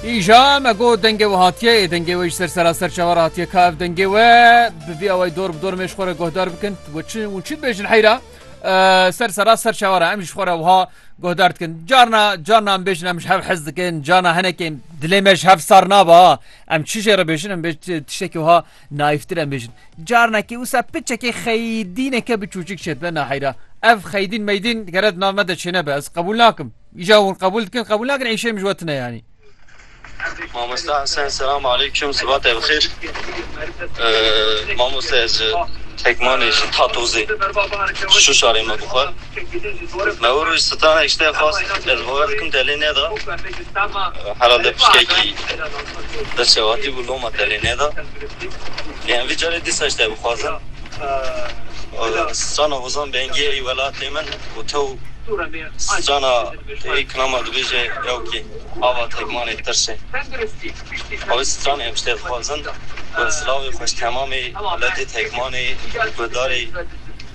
Îja me got dengê we hatiye ê dengê we jî ser seraser çawa re hatiye ka ev dengê we bi vî awayî dor bi dor mêj xwe re guhdar bikin we çi û çi dibêjin heyra ser sera ser çawa re em jî xwe re wiha guhdar dikin carna carna em bêjin em ji hev hez dikin carna hinekê dilê me ji hev sar naba em çi jê re bêjin em bê tiştekî wiha naîftir em bêjin carnekî wisa piçekê xeydîneke bi çûçik çêdibe naheyra ev xeydîn meydîn geret nav me de çêne be ez qebûl nakim Îca hûn qebûl dikin qebûl nakin îşê min ji we tune yanî. Mamosta Hesen selam aleyküm sibatê bixîr. Mamosta ez ji Tekmanê ji Tatozê şu şarê me bi xwe. Me wê roj sitanek ji te xwest ez bawer dikim te lê neda. Herhalde piştekî destçewatî bû loma te lê neda. Em vî carê dîsa ji te bixwazin strana Hozan Bengî ê welatê min û te û strana ê kilama dibêje ew kî ava tekmanê tirş e. Ew stranê em ji te dixwazin ku silavê xwe ji temamê welatê tekmanê guhdarê.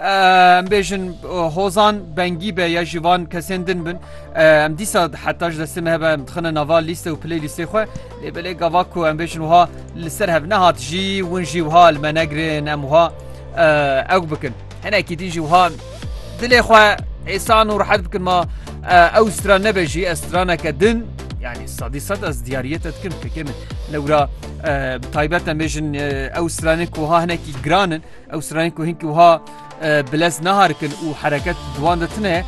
Em bêjin hozan bengî be ya ji van kesên din bin em dîsa heta ji destê me hebe em dixine nava lîste û pilê lîstê xwe lê belê gava ku em bêjin wiha li ser hev nehat jî win jî wiha li me negirin em wiha ew bikin hinekî din jî wiha dilê xwe êsan û rehet bikin ma ew stran nebe jî ez straneke din yani sadî sed ez diyariyet et dikim fikê min lewra taybet em bêjin ew stranên ku ha hinekî giranin Ew sirayên ku hinkî wiha bilez naharikin û hereket di wan de tune,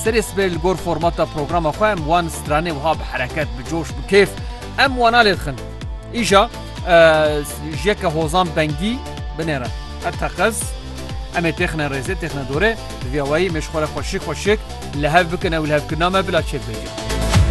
serê sibê li gor formata programa xwe em wan stranê wiha bi hereket, bi coş, bi kêf em wana lê dixin. Îja ji yeke hozan bengî binêre. Her teqez em ê têxine rêzê, têxine dorê, bi vîya wayî mêşxwere xweşik xweşik li hev bikin ew li hevkirina me bila çêbibêje.